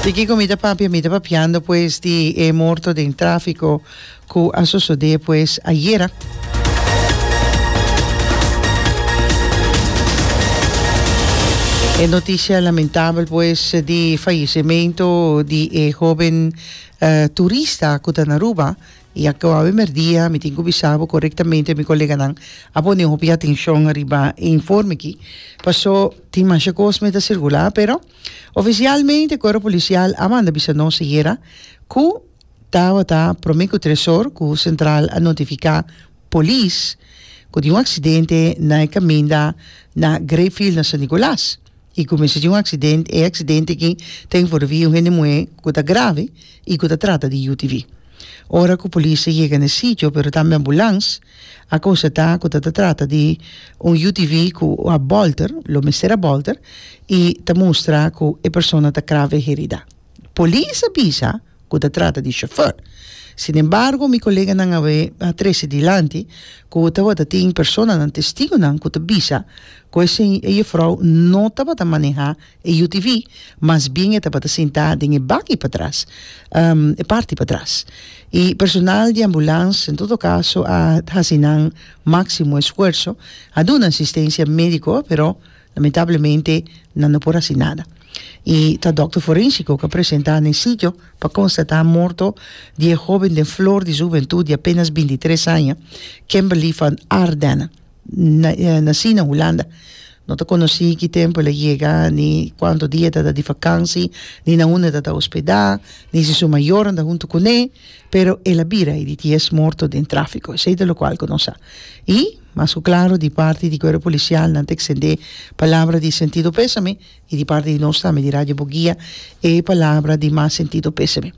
Di kiko mi ta papia? Mi ta papiando pues di e morto den tráfiko ku a sosodé pues ayera. E notisia lamentabel pues di fayesementu di e hóben turista ku ta na Aruba, I a kaba e merdia mi tin ku bisa bo korektamente mi koleganan a pone hopi atenshon riba e informe aki pasó tin masha kos mester sirkulá pero ofisialmente Kuerpo Polisial a manda bisa nos ayera ku tabata promé ku tres or ku sentral a notifiká polis ku tin un aksidente na e kaminda na Greyfield na San Nikolas. i ku mester tin un aksident e aksident aki ta envolvi un hende muhé ku ta grave i ku ta trata di yu tv ora ku polis ta yega na e sitio pero tambe ambulans a konsatá ku ta ta trata di un yu tv ku a bolter lo mester a bolter i ta mustra ku e persona ta grave heridá. Polis a bisa cu ta trata di chauffeur. Sin embargo mi coleganan awe a trece dilanti cu tabata tin personanan, testigonan, cu ta bisa cu e se e juffrouw no tabata maneha e UTV, mas bien e tabata sinta den e bakkie patras, um, e parti patras. Y personal di ambulance en todo caso a haci nan maximo esfuerzo, a duna asistencia medico, pero Lamentablemente nan no por hasi nada y ta dokter forensico ke presenta na e sitio pa konstata morto di e hoben den flor di su hubentud di apenas bintitres aña Kemberly van Ardenne nasi na Hulanda. No ta konosi ki tempu el a yega ni kuantu dia e ta ta di vakansi ni na unda e ta ta hospeda ni si su mayornan ta huntu kuné pero el a bira e di ti es morto den trafiko esei ta lokual ku nos sa y Mas ku klaru di parti di kuerpo polisial nan ta eksendé palabra di sentido pésame i di parti di nos tambe di Radio Bugia e palabra di mas sentido pésame.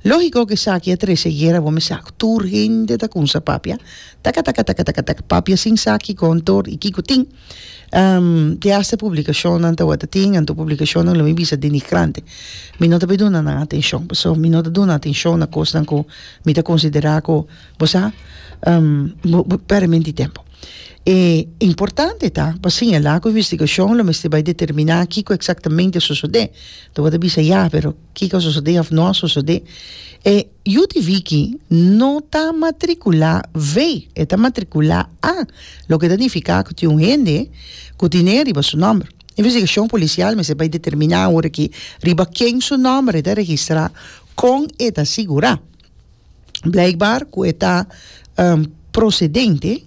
Lógiko ku esaki a trese guera bo mester ak tur hende ta kumsa papia takatakatakatakatak papia sin sa kiko antor i kiko tin te hasta publikashonnan tawata tin anto publikashonnan lo mi bisa denigrante mi no ta bin duna nan atenshon paso mi no ta duna atenshon na kosnan ku mi ta konsiderá ku Bo sa, bo bo pèrdè menti tempu. E importante ta pa siñalá ku investigashon lo mester bai determiná kiko eksaktamente a sosodé. Ta wòrdu bisa ya, pero kiko a sosodé òf no a sosodé? E yu di Viki no ta matrikulá ve, e ta matrikulá a, loke ta nifiká ku tin un hende ku tine riba su nòmber. Investigashon polisial mester bai determiná awor aki riba ken su nòmber e ta registrá, kon e ta sigurá. blijkbaar ku e ta procedente,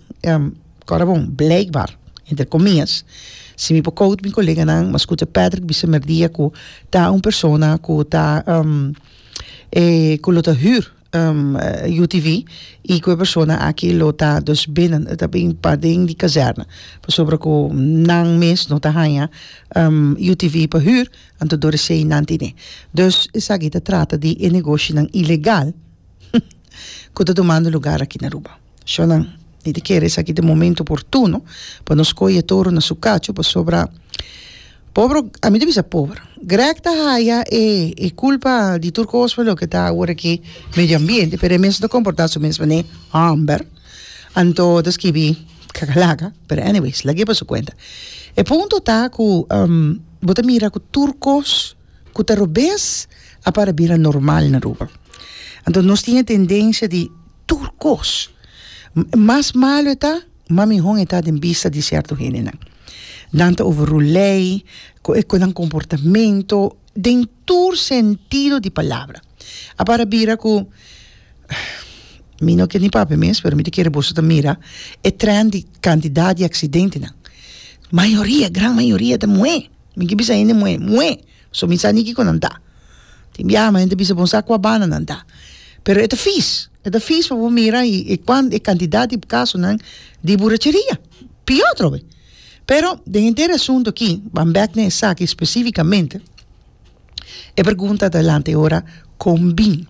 kòrda bon, blijkbaar, entre komias, si mi por koud mi koleganan, mi a skuta Patrick bisa mèrdia ku ta un persona ku ta ku lo ta hür UTV i ku e persona aki lo ta dus binnen, lo ta bin paden di kazèrna, pasobra ku nan mes no ta haña UTV pa hür Anto dor sheinan tine. Dus esaki ta trata di e negoshinan ilegal ku ta tumando lugar aki na Aruba. Shò nan, mi ta kere esaki ta e momento oportuno pa nos koi e toro na su kachu pasobra pober, ami ta bisa pober, Greg ta haya e e kulpa di tur kos pa loke ta awor aki medio ambiente pero e mes ta komportá su mes manera hòmber. Anto ta skibi kakalaka pero anyways lag'é pa su kuenta. E punto ta ku Bo ta mira ku tur kos ku ta robes a para bira normal na Aruba. Anto nos tin e tendensia di tur kos mas malu e ta, mas mihon e ta den bista di sierto hendenan. Nan ta overrule lei, ku e ku nan komportamento den. tur sentido di palabra. A para bira cu, mi no kier ni papia mes, pero mi ta kere boso ta mira e trend di cantidad di accidentenan. Mayoria, gran mayoria ta muhé. Mi ke bisa hende muhé, muhé. So mi sa ni kico nan ta. Tin biaha men hende ta bisa bo sa cua banda nan ta. Pero e ta fis, e ta fis pa bo mira y e cantidad di casonan di buracheria, pio atrobe. Pero, den henter e asuntu akí, ban bèk na esaki spesífikamente, e pregunta ta lanta e ora kon bin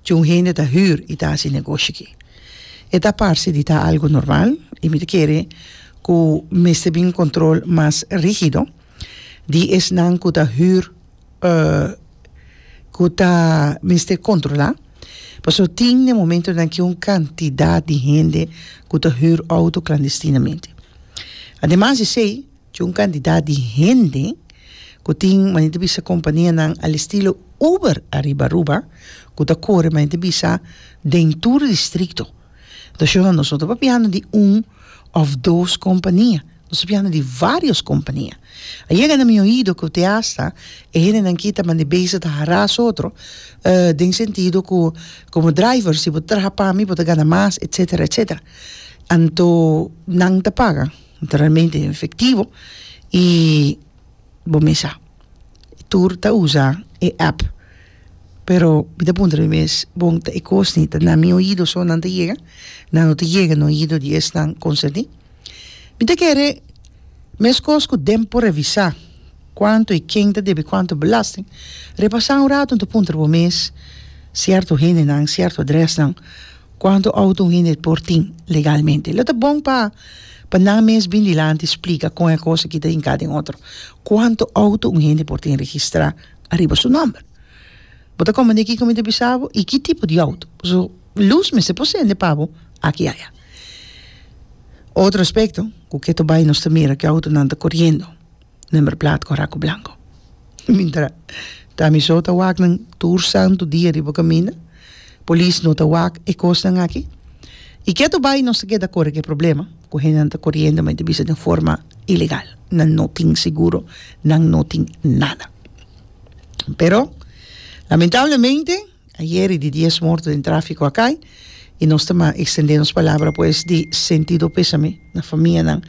dje un hende ta hür i ta hasi negoshi akí. E ta parse di ta algu normal i mi ta kere ku mester bin un kontrol mas rígido di esnan ku ta hür. ku ta mester kontrolá pasobra tin den momentonan ku un kantidat di hende ku ta hür outo klandestinamente. Ademas di esei, chin un kantidat di hende ku tin manera ta bisa kompanianan al estilo Uber ariba Aruba ku ta kore manera ta bisa den tur distrito. Entonces no nos no ta papiando di un of dos compania nos ta papiando di varios compania a yega na mi oido cu te asta e hendenan ki ta mandi beza ta haras otro eh den sentido cu como drivers si bo ta traha pami bo ta gana mas etcetera etcetera anto nan ta paga naturalmente en efectivo y bo me sa tur ta usa e app. Pero mi ta puntra mi mes, bon ta e kosni ta na mi oido so nan ta yega? Nan no ta yega na oido di esnan konsentí? Mi ta kere meskos ku den por revisá kuantu i ken ta debe kuantu belasting, repasá un ratu ta puntra bo mes sierto hendenan, sierto adrèsnan, kuantu outo un hende por tin legalmente. Lo ta bon pa pa nan mes bin dilanti splika kon e kos aki ta hinká den otro. Kuantu outo un hende por tin registrá? ariba su nomber. Bo ta komprende kiko mi ta bisa bo i ki tipo di outo. So, lus mester por sende pa bo aki i aya. Otro aspekto ku ketu bai nos ta mira ku e outonan ta koriendo, nomber plat ku raku blanko. Mientra ta mi so ta wak nan tur santu dia riba kaminda. Polis no ta wak e kosnan aki. I ketu bai nos ta keda kore ku e problema ku hendenan ta koriendo men ta bisa den forma ilegal. Nan no tin seguro, nan no tin nada. Pero lamentablemente ayer i di dies morto den trafiko akai i nos ta ekstendé nos palabra pues di sentido pesame na famianan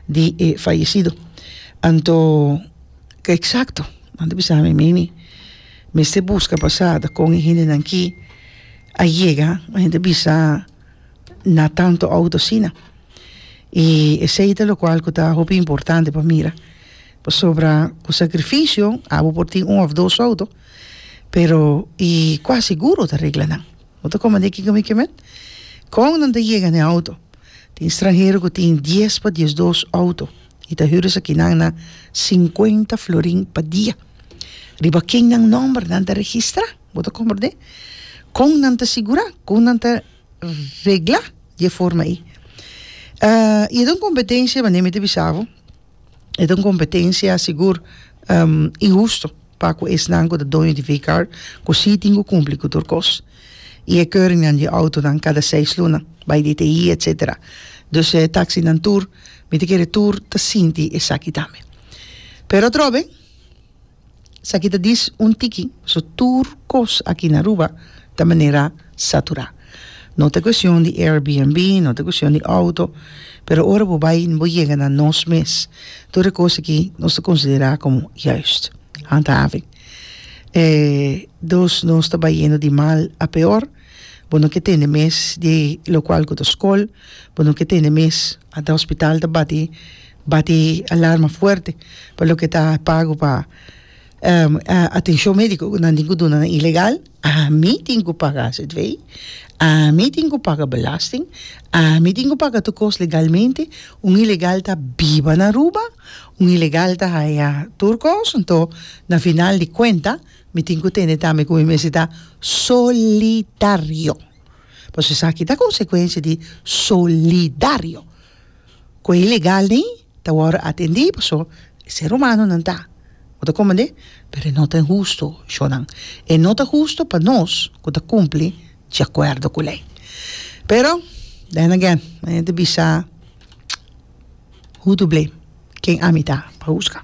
di e fayesido. Anto ke eksakto nan ta bisa ami, meini? Mester buska pasada kon e hendenan ki a yega, un hende bisa na tantu outo asina. I esei ta lokual ku ta hopi importante pa mira, pasobra ku sakrifisio abo por tin un òf dos outo, pero i kuas seguro ta regla nan. Bo ta komand'é kiko mi ke mèt? Kon nan ta yega na e outo? Tin stranhero ku tin dies pa diesdos outo I ta hür esakinan na sinkuenta florin pa dia. Riba ken nan nòmber nan ta registrá? Bo ta komprendé? Kon nan ta sigurá? Kon nan ta reglá di e forma ei? I e ta un kompetensia, manera mi ta bisa bo, e ta un kompetensia sigur inhusto. pa ku esnan ku ta doño di vehicar ku sí tin ku kumpli ku tur kos i e keuringnan di e outonan kada seis luna bai DTI etcetera. Dus e taksinan tur mi ta kere tur ta sinti esaki tambe. Pero atrobe esaki ta dis un tiki pasobra tur kos aki na Aruba ta manera saturá. No ta cuestion di Airbnb, no ta cuestion di auto, pero ora bo bay bo yega na nos mes, tur e cos aki nos ta considera como juist, handhaving. E dos nos ta bayendo di mal a peor, bo no ke tende mes di locual cu ta scol, bo no ke tende mes anta hospital ta bati bati alarma fuerte pa loke ta pago pa atencion medico cu nan tin cu duna nan ilegal. Ami tin ku paga ztv, ami tin ku paga belasting, ami tin ku paga tur kos legalmente, un ilegal ta biba na Aruba, un ilegal ta haya tur kos, nto na final di kuenta mi tin ku tende tambe ku mi mes ta solidario, pasobra esaki ta konsekuensia di solidario ku e ilegal nei. ta wòrdu atendí pasobra e ser humanonan ta, bo ta komprendé? Pero e no ta hustu, shornan. E no ta hustu pa nos ku ta kumpli di akuerdo ku lei. Pero, then again, mañana ta bisa who to blame, ken ami ta pa huska.